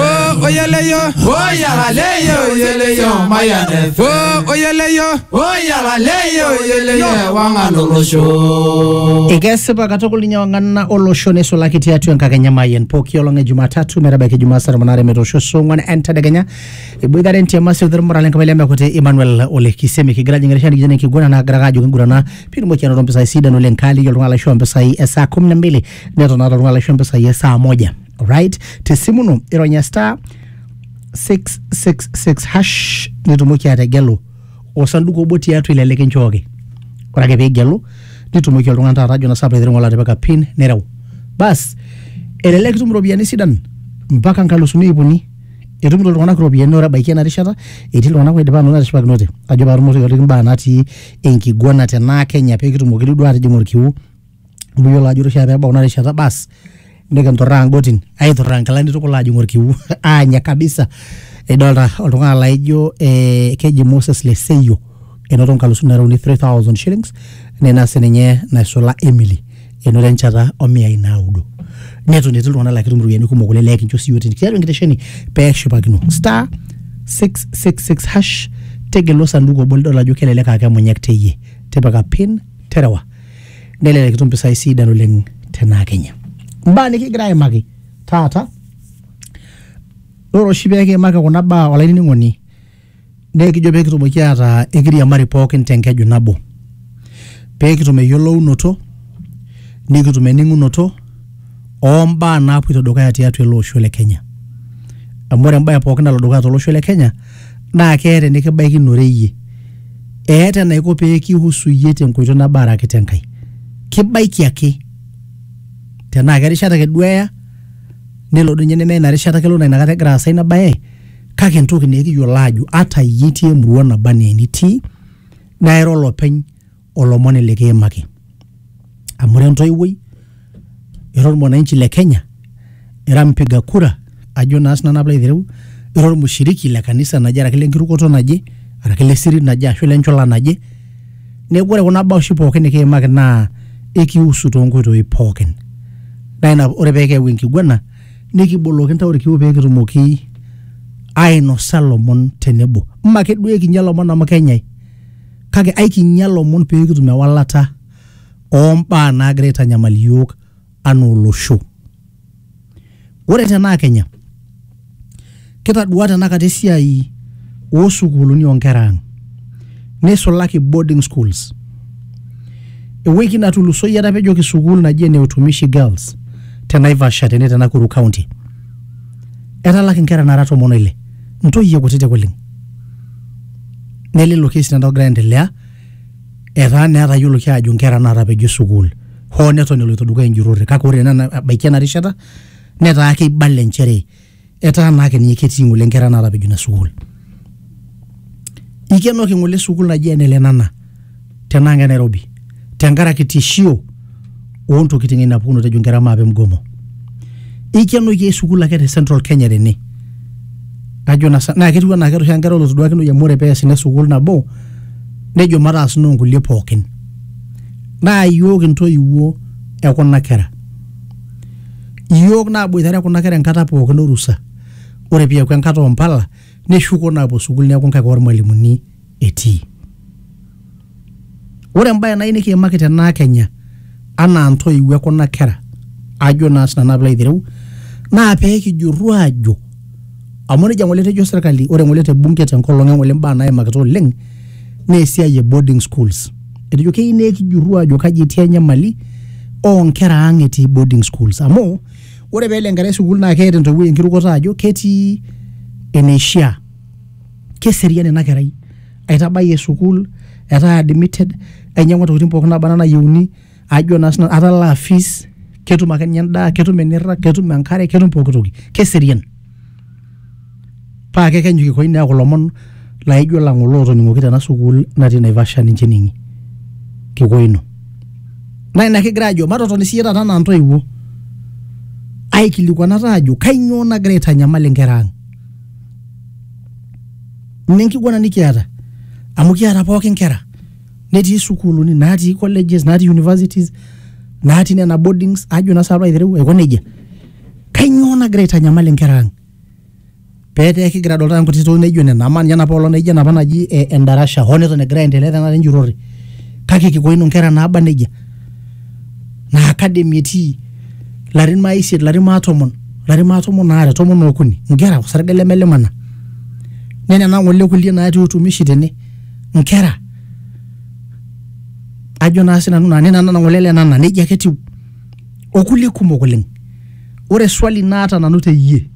ó oyele yó. ó yàrá léyè òyele yó máyà nẹfẹ. ó oyele yó. ó yàrá léyè òyele yó ẹwà ń alòlóṣó. ekesipa katukul ninye wang'anna olosho neisulaki tiatua enkakenya mayian pooki olong e jumatatu metabaiki jumaa saa tomon aare metoosho saa ong'wan entedekenya eboitare entiama sii olmurrale enkabila lemekuti emmanuel ole kisemi kigira ajing erishata nikijana enkiguana naagira ake ajo kingurana piitumoki anoto mpisai sidan oleng kaaliki oltung'ani laishoo mpisai e saa kumi na mbili neton naata oltung'ani laishoo mpisai e saa moja right te simu ino ironya star 666 hash nitumoki ategelu osanduku obo tiatua ile likinchooki ore ake piigelu nitumoki oltung'ani taata ajo nasapa aiteru ng'ole atipika pin nireu bas elelek itum iropiyiani sidan mpaka nkalusuni iip uni etumito iltung'anak iropiyiani ore ebaiki ena rishata etii iltung'anak oidipa anoto etishipakinote ajo paatumoki aitoliki imbaa natii enkiguana tenaa kenya pekitumoki duo atijing orkiu amu iyiolo ajo ore oshi ake peebau ina rishata baas nikinturraa ing'otin aiturraa inkilani tukul aajing orkiu aanya kabisa idolta oltung'ani laijo eh, keji Moses Leseyo enoto inkalusuni nara uni 3000 shillings nina sininye naisula Emily enoto enchata omiai naudo neton etii iltung'anak laa ketum iropiyiani kumok oleng laa kincho siiyiook tini tiatua enkitesheni peshipakino star 666 hash tegelu osanduku obo lidol ajo kelelek aa kemunyak teyie tipika pin terewa nelelek itum mpisai sidan oleng tenaa kenya mbaa nikigira aimaki taata ore oshi pekiimaki kuna baa olainining'oni naa ekijo pekitumoki ataa ekiriamari pookin tenkeju nabo pekitum eyiolounoto nikitum ening'unoto oo mbaa naapoito dukuya tiatua ele osho le Kenya. Amu ore embae pooki nalo dukuya tolosho le Kenya naa keeta enikibaikinore iyie. Eeta enaiko pee kihusu iyie tenkoitoi nabo araki tenkae. Kibaiki ake. Tenaa kerishata ake duo eya, nelo doi ninye nemeya ina rishata kelo naa inakata egira aasa ina bae kake entoki naa ekiyiolo aajo ata iyie itii emurua naba enaa enitii naa ira olopeny olomoni likiimaki amu ira entoiwuoi ira ormwananchi le kenya ira mpiga kura ajo naa sinanu apilo aitereu ira ormushiriki le kanisa naje araki lenkirukoto naje araki le sirit naje ashu lenchula naje neeku ore kuna baa oshi pookin nikiimaki naa ekiusu toonkoitoi pookin naa ina ore peekiyau enkiguana nikiboloki intao irkiu peekitumoki ainosa ilomon tenebo mme ake duo ekinya ilomon amu kenyae kake aikinyia lomon pee kitum ewalata oo mbaa naagira aitanyamal iyiook anaa olosho. Ore tenaa Kenya, kitadua tenakata esiai oo sukuuluni oo nkera ang, neisulaki boarding schools. Ewiki natulusoyie etapejoki sukuul naji ene Utumishi Girls te Naivasha tene te Nakuru County. Etalaki nkera naara tomon o ile. ntoyie kutitik oleng nelelo kesi nena ogira aendelea etaa naa etayioloki aajo nkera naatapejo sukuul hoo neton eloito dukuya enjurrore kake ore naa ena- ebaiki ena rishata netaa keibala inchere etaa naa ake ninye ketii ng'ole nkera naatapejo ina sukuul ikenoki ng'ole sukuul naji ene lenana tenaa ngai Nairobi tenkaraki tishio ontokitin ina pukunoto ejo nkera maape mgomo ikenoki ai sukuul ake te central kenya tene ajo na sa- naa ketiu anaa keeta oshi nkera olotoduakinoyu amu ore pees ina sukuul nabo nejo mataas noo nkulie pookin naa iyiook intoiwuo ekuna kera iyiook naaboitare kuna kera enkata pookin orusa ore piaku enkata ompala neshuko naapuo sukuul neeku nkaik ormalimuni etii. Ore embae nayieu nikiimaki tenaa kenya anaa ntoiwuo ekuna kera ajo naa sinanu pilo aitereu naa pee kijurru aajo amu nejia ng'ole etejo serkali ore ng'ole te bunge tenkolong e ng'ole mbaa naimakita oleng naa esiai e boarding schools. Etejo keyieu naa ekijurru aajo kaji etii enyamali oo nkera ang etii boarding schools amu ore peelo enkerai sukuul naa keeta entoiwuoi enkirukoto ajo ketii eneishia keserian ina kerai aitabayie sukuul etaa admitted ainyiang'ua intokitin pookin naba anaa nayieuni ajo naa sinanu atalaa fees ketum ake ninye endaa ketum enirrag ketum enkare ketum pokitoki keserian paa kekenyu kikoi neeku ilomon laijo lang ng'ole otoning'oki tena sukuul natii naivasha ninche ening'i kikoi ino naa ina kigira ajo matotoni siiyie taata anaa intoiwuo aikilikuanata ajo kainyoo nagira aitanyamal inkera ang mme nkiguana nikiata amu kiata pooki nkera netii sukuuluni natii colleges natii universities natii nena boardings ajo na salo aitereu aiko nejia kainyoo nagira aitanyamal inkera ang petaa kigira adol taata nkuti tokitin naijo nena amaa ninye enapa olong naijo enapa naji eh, endarasha hoo neton egira aendelea tenakata enjurrore kake kiko ino inkera naaba nejia naa academy etii larin maa isiet larin maa tomon larin maa tomon aare tomon okuni nkera osarge lemelimana nenena ng'ole kulie natii utumishi tene nkera ajo naa sinanu naa nena nana ng'ole le nana nejia ake etiu okulie kumok oleng ore swali naata nanu teyie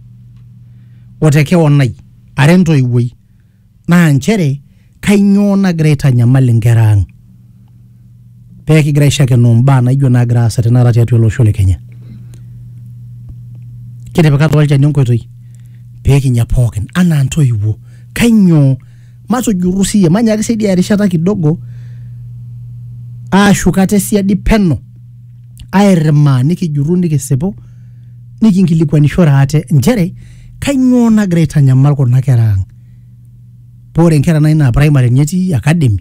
otekeon ai ara entoiwuoi naa nchere kainyoo nagira aitanyamal inkera ang pee kigira aishakenoo imbaa naijo naagira aasa tenakata tiatua ele osho le Kenya. Kitipika taa olchani enkoitoi pee kinya pookin anaa ntoiwuo. Kainyoo? Matujurru siiyie, manyaaki saidia erishata kidogo aashuk ate siadi peno airrimaa nikijurru nikisipu nikinkilikwanishore ate nchere Kainyoo nagira aitanyamal kuna kera ang? Paa ore nkera nai naa primary ninye etii academy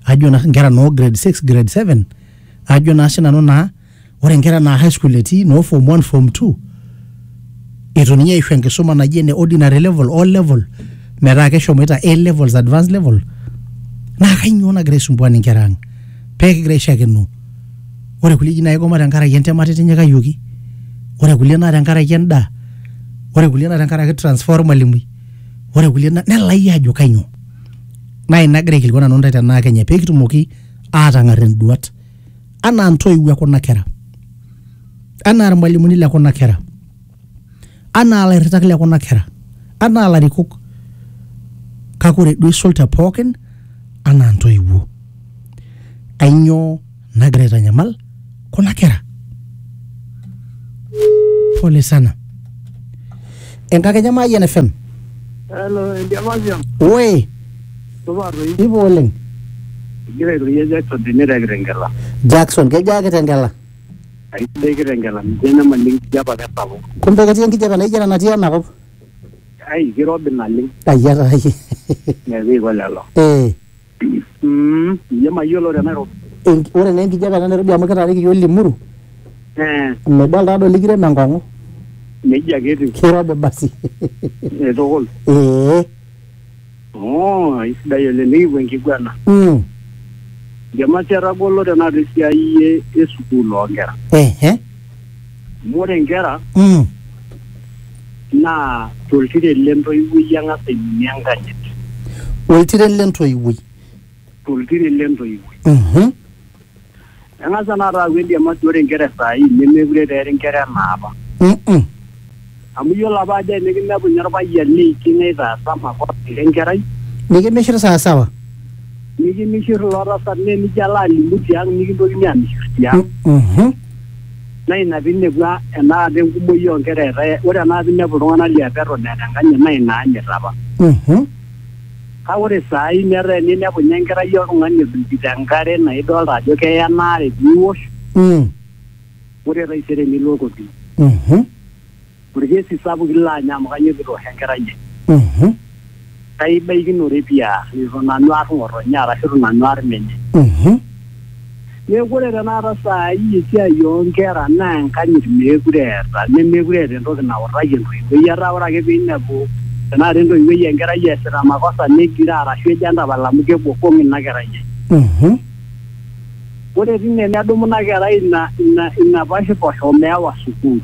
ajo naa nkera noo grade 6, grade 7 ajo naa sinanu naa ore nkera naa high school etii noo form 1, form 2 eitu ninye eishu enkisuma naji ene ordinary level, O level metaa keshomoita A levels, advance level naa kainyoo nagira aisumbuan inkera ang pee kigira aishakeno ore kulie eji naa kigoma tenkaraki entemata itinyikayioki ore kulie naa tenkaraki endaa ore kulie naa tenkaraki transfer ormalimui ore kulie naa nelai ajo kainyoo naa ina agira aikilikuan nanu intae tenaa kenya pekitumoki atang'arr induat anaa intoiwuo ekuna kera anaa irmalimuni lekuna kera. anaa ilairritak le kuna kera anaa ilarikok kake ore duo eisul te pookin anaa ntoiwuo ainyoo nagira aitanyamal kuna kera pole sana enkakenya Mayian FM Hello, Endiamasiam. oe Supa toi. ipo oleng Egira airorie Jackson tene te Kitengela. Jackson kejo ake tengela Aisidai Kitengela, mitii enyamali enkijape ake esapuk. Kumbe ketii enkijape naijo ena natii ena kop? Ai, kirobi naleng. Ai atai. Neeku eiko lelo. Ee. Mm, iyie mayiolo te Nairobi. Ore naa enkijape te Nairobi amu kitaaniki iyiook Limuru. Ee. Midol taadoi likirem enkong'u. Nejia ake etiu. Kirobi basi. Tukul. Ee. Oh, aisidai oleng nikipuo enkiguana. Mm. Jamasi etagolo tenakata esiai e- e sukuul oonkera. Ehe. Amu ore nkera Mm. naa toltiren le ntoiwuoi eng'as aiminie enkanyit. Oltiren le ntoiwuoi. Toltiren le ntoiwuoi. Mhm. Eng'asa naa taaku endiamasi ore nkera e saa hii nemekure taa eri nkera enaapa. Mm-mm. Amu iyiolo apa ajo enikinepu ninye olpayian neikiny aitaasa makosa ira enkerai, Nikimishir sawasawa. nikimishir ilo tasat naa enijo alo alimu tiang' nikintokini aamishir tiang'. Mhm. Naa ina piinepu a- enaata enkumoi oo nkera etaa ore enaata inepu iltung'ana liapa eton eeta enkanyit naa ina anyit apa. Mhm. Kake ore saai metaa eninepu ninye enkerai oltung'ani edung'ito enkare naa idolta ajo keya ena are piiwosh, Mm. ore taisere nilo kotini. Mhm. Olkesi sapuk ilo anya amu kanyoo pitoosho enkerai ai? Mhm. Kaibaikinore pii aar, eitu nanu aar ng'otonye arashu eitu nanu aar menye. Mhm. Neaku ore tenakata saai esiai oo nkera naa enkanyit meekure eeta nemeekure eeta entoki nautaki entoiwuoi. Etaa ore ake piinepu tenakata entoiwuoi enkerai easita makosa negiroo arashu ejo entapala amu kebokong ina kerai ai. Ore tine nedumu ina kerai ina ina ina poshiposh omeewa sukuul.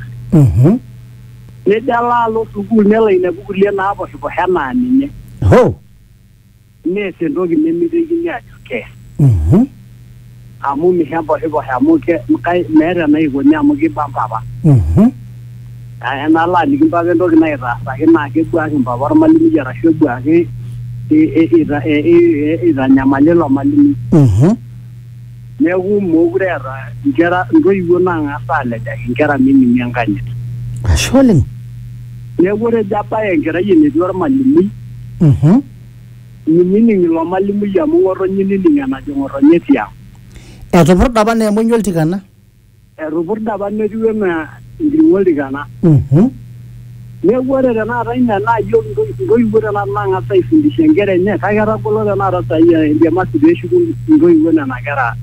Nejo alo alo sukuul nelo ainepu kulie naaposhiposh enaa ninye. nees entoki nemeitekini ajo kees Mhm. amu misho emposhiposho amu ke- kai- meeta enaikoni amu kiba mpapa Mhm. Naa enalo aliki mpapa entoki naitaasaki naa kebuaki mpapa ormalimui arashu ebuaki i- i- ita- i- i- i- itanyamali ilo malimui Mhm. neeku mookure eeta nkera ntoiwuo naang'as aalejaki nkera miminie enkanyit Ashe oleng. neeku ore ejo abaya enkerai enetii ormalimui Mhm. Minining ilo malimui amu ng'otonye inining enajo ng'otonye tiang. Etupurda apa naa emonyua oltikana. Etupurda apa netiu enaa enkiring'o oltikana. Mhm. Neeku ore tenakata ina naa iyiok intoiwuo tenakata naang'as aifundisha inkera enye kake etagolo tenakata saai embaiki peeshuku intoiwuo nena kera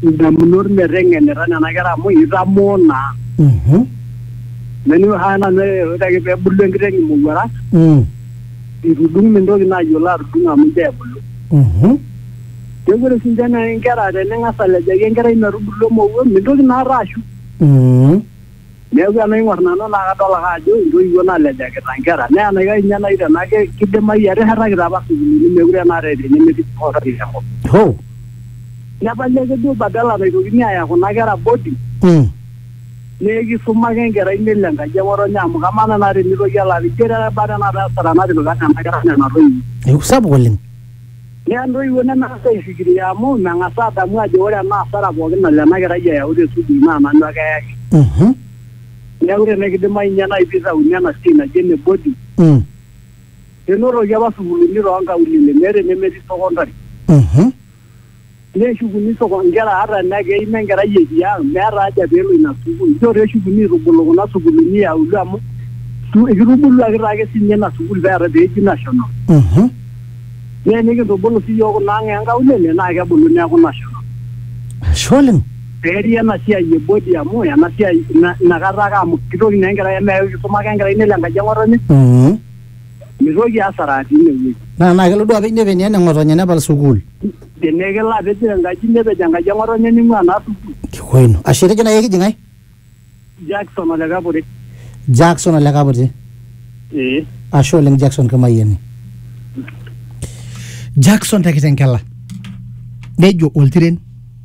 indamunot meteng'enita nena kera amu eitamoo naa. Mhm. Neeku ore ake peebulu enkiteng imowuarak. Mm. itudung mintoki naa ayiolo atudung amu injoo ebulu Mhm. neeku ore sinche naa inkera tening'as alejaki enkerai metubulu emowuo mintoki naata ashu Mhm. neeku enaing'or nanu naa kadol ake ajo intoiwuo nalejakita inkera naa enaikash ninye naaji tenaa ke- kidimayu eteshetakita apa sukuulini meekure naata eeta enemetii sipitali tenkop Hoo. nepali ake duo badala naitokini aaya kuna kera boarding Mm. Naa ekisuma ake enkerai nelo enkaji e ng'otonye amu kamaa tenaa tenitoki alo apik ijo taa kebaa tenakata asara natipika nena kera nena toiwuo. Eeku sapuk oleng. Neya intoiwuo nemeng'as aifikiria amu meng'as aadamu ajo ore ena asara pooki nalo ena kerai ayau te sukuul naa nanu ake eyaki. Neeku tenekidimayu ninye naai piitauni ena siai naji ene boarding nenotoki apa sukuuluni too nkaulele meeta enemetii secondary Neshukuni soko nkera ata enaa keima enkerai etii ang, meeta haja pee elo ina sukuul. Inchoo taa eshukuni aitubulu kuna sukuulini e auluo amu kitubuluaki taa ake sii ninye ina sukuul pee eeta pee eji national. Mhm. Naa enikintubulu sii iyiook kuna ang e nkaulele naa kebulu neeku national. Ashe oleng. Pee eri ena siai e body amu ena siai ina kata ake amu kitoki naa enkerai amu meeku kisuma ake enkerai nelo enkaji e ng'otonye. Mhm. mitoki asara tine wueji. Naa naa kelo duo apej nepej naa eneng'otonye nepal sukuul. Tenaa kelo apej enkaji nepej enkaji eng'otonye ning'ua naa sukuul. Kikoi ino. Ashe etejo naaji ekiji ng'ae? Jackson ole Kaputi. Jackson ole Kaputi. Ee. Ashe oleng Jackson Kimayiani. Jackson te Kitengela nejo oltiren.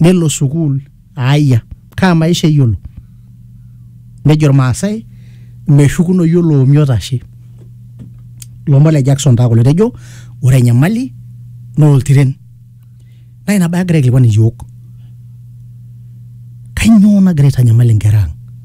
nelo sukuul aayia kaa maisha eyiolo nejo irmaasay meshukunoyu oloomi otashe ilomon le Jackson taa kulo etejo ore enyamali naa oltiren naa ina bae agira aikilikuan iyiook kanyoo nagira aitanyamal inkera ang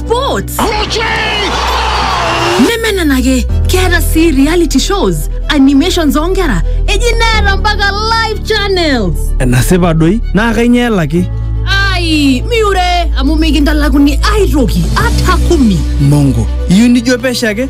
sports nemenenake keeta sii reality shows animations oonkera eji neeta mpaka live channels enasipa doi naa kainyoo elaki ai miure amu mikintalakuni aitoki ata kumi mongo iyieu nijo pesho ake